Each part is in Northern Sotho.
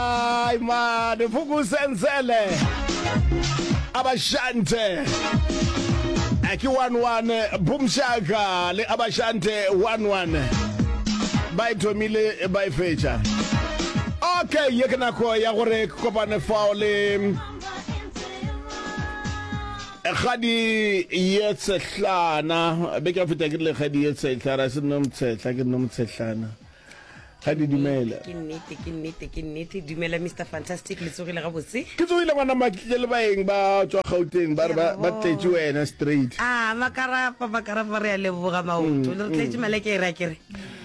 Ay mane fukusenzele abashante aki 11 bumshaka le abashante 11 ba e thomile ba e fetša okay ye ke nako ya gore ke kopane fao le kgadi ye tshehlana be ke feta ke le kgadi ye tshehlana se nno mtshetla ke nno mtshehlana ga di dumela ke nnete ke nnete ke nnete dumela mr fantastic le tsogile gabotse ke tsogile gona matle le baeng ba tswa gauteng ba re ba ba tletše wena straight a makarapa makarapa re a leboga maoto le re tletse maleke e re a kere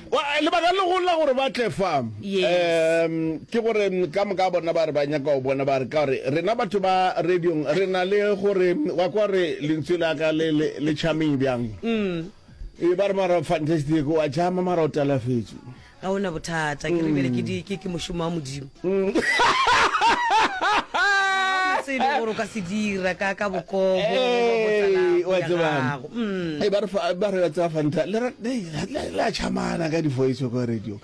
Wa- eh, lebaka le golo la gore ba tle fa Yes. em, ke gore mm, ka moka bona ba re ba nyaka go bona ba re ka gore rena batho ba radiong re na le gore wa kwa re lentswe la ka le- le le charming bjang e ba re mara fantastic wa jama mara o talafetše ga ona bothata ke re bjale ke di- ke ke mošomo wa modimo Mm. tsebe gore o ka se dira ka ka bokobo Ee, wa tseba. Mm. e ba re fa- ba re wa tseba fanta le ra- le- le- le a chamana ka difoiso kwa radio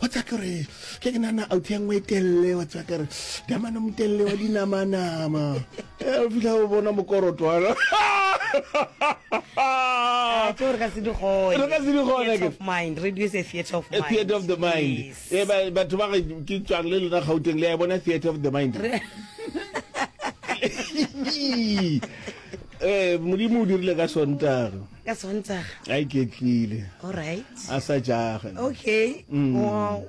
wa tseba ke gore ke ke nana auto ya nngwe e telele wa tseba kere damana motelele wa dinamanama Eh, o fitlha o bona mokoroto wa ka. Ah, tse gore ka se di gone. Re ka se di gone, Theatre ke- of mind radio is a theatre of A mind theatre of the mind Yes. Eh, ba- batho ba re ke tswang le lona gauteng le ya e bona theatre of the mind Eh, modimo o dirile ka sontaga ka sontaga a iketlile alright a sa jage okay mm. wow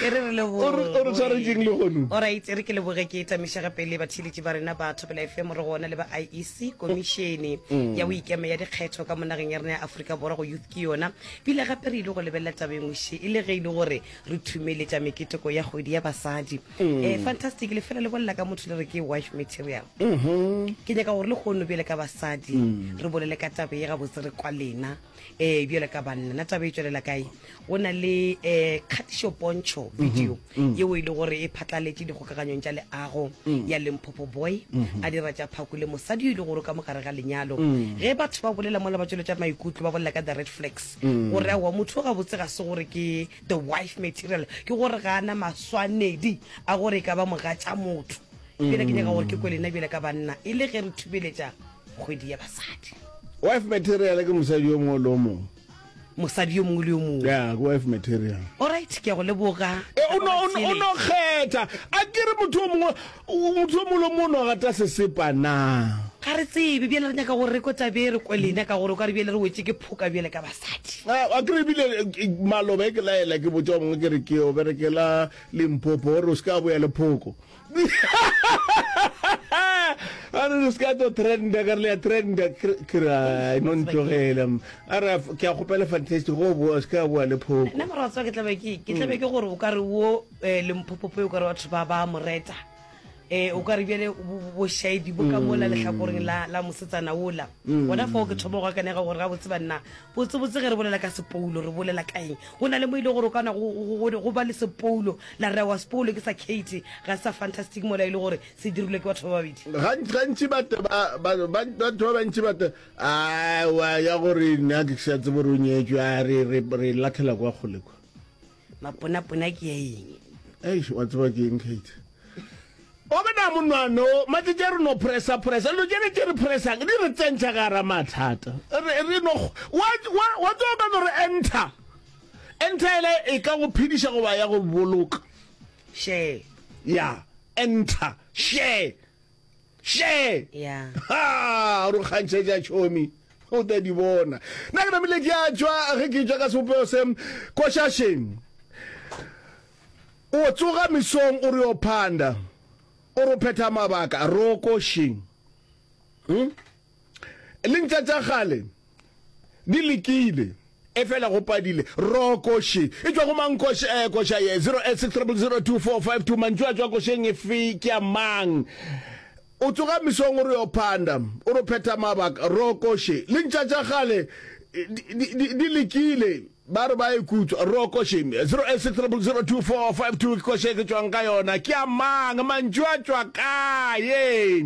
e re re leboore tshwaretseng le gonu orit e re ke leboge ke tamišega pele batheletši ba rena batho pela efe mo re gona le ba iec komišene mm. ya boikeme ya dikgetho ka monageng ya rena ya aforika borwa go youth ke yona pile gape re ile go lebelela tabengwše e le ge e le gore re thumeletša meketeko ya kgwedi ya basadi eh, fantastic le fela le bolela ka motho le re ke wife material ke nyaka gore le kgono bjale ka basadi Mm. re bolele ka tabe ye gabotse re kwa lena um bjale ka banna na tabe e tswelela kae go na le um kgatišo pontšho video Mm. yeo e le gore e phatlaletše dikgokaganyong tša leago Mm. ya lemphopho boy Mhm. a dira tša phako le mosadi yo e le gore o ka mogare ga lenyalo Mm. ge batho ba bolela mola ba tsweletša maikutlo ba bolela ka the red flags Mm. gore aowa motho o gabotse ga se gore ke The wife material ke gore ga a na maswanedi a gore e ka ba mogatša motho. Bjale ke nyaka gore ke kwe lena bjale ka banna e le ge re thubeletša kgwedi ya basadi. Wife material ke mosadi yo mongwe le yo mongwe. Mosadi yo mongwe le yo mongwe. Ya, ke wife material. Alright, ke a go leboga. E, o no, o no, o no kgetha. A ke re motho yo mongwe O motho yo mongwe le mongwe o gata sesepa na? Ga re tsebe, bjale re nyaka gore re kwe taba ye, re kwe lena, ka gore o ka re bjale re wetše ke phoka bjale ka basadi. Wa kry ebile maloba e ke laela ke botša wa mongwe ke re ke yo berekela Limpopo gore o se ka boya le phoko a re o se ka tlo trenda ka re le ya trenda ke re ai no ntlogela a re ke a kgopela fantastic go boa o se ka boa le phoko nna mora wa tseba ke tlabe ke ke tlabe ke gore o ka re wo eh, le mphopope o kare batho ba ba moreta eh o ka re bjale bošaedi bo ka mola lehlakoreng la la mosetsana ola gona fao ke thoma go akanega gore ga botse banna botsebotse ge re bolela ka sepoulo re bolela ka eng go na le mo e le gore o kana go- go go- go ba le sepoulo la re wa sepoulo ke sa kate ga se sa fantastic mola e le gore se dirilwe ke batho ba babedi Gant- gantši bate ba- ba- ba- batho ba bantši bate awa ya gore nna ke sa tsebo re o nyetswe a re re- re latlhela kwa kgole kwa maponapona ke ya eng eish wa tseba ke eng kate wa bona monwano matsetse a re no pressa pressa lo jene tse re pressang di re tsentšha ka ra mathata re no wa tsoa ka no re enter enter ele e ka go phediša goba ya go boloka share ya enter share she ya ha ro kgantšhetša tšhomi o tla di bona nna ke namile ke a tšwa ge ke tšwa ka sebopego se košašeng o tsoga mesong o re yo phanda o ro phetha mabaka roko sheng hmm? Lentša tša kgale di lekile. Efela go padile rokoši e tšwa go mang koša eh, koša ye 0860002452 mantšu a tšwa košeng e fe ke a mang o tsoga mesong o re yo phanda o re phetha mabaka rokoši le ntša tša gale di lekile ba re ba e kutswa rokoši 0860002452 ke koša e ke tswang ka yona ke a mang mantšu a tšwa kae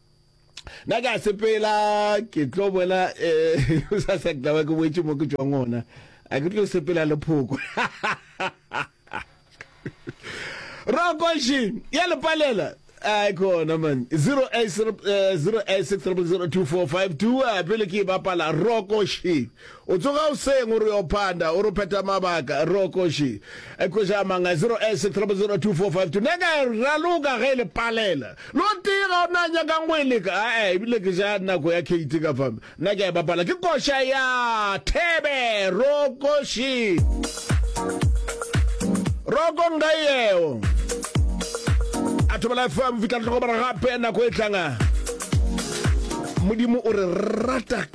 nna ka sepela ke tlo boela um sa sa ke tlabe ke boetse mo ke tswang ona a ke tlo sepela le phoko rokoši ya lepalela a ke ona man 0860002452 eh, eh, pele ke e bapala rokoši O tsoga goseng o re o yo phanda, o re o phetha mabaka, re o koši. E kweša a mang a 0 e 6 triple 0 2 4 5 2. Nna ka e raloka ge e le palela. Le o tee ga o na a nyakang go e leka. A-e, ebile ke ja nako ya Katie ka fame. Nna ke a e bapala. Ke koša ya Thebe, rokoši. Roko nka yeo. A thobela fame, fihla re tlhokomela gape nako e tlanga. Modimo o re rata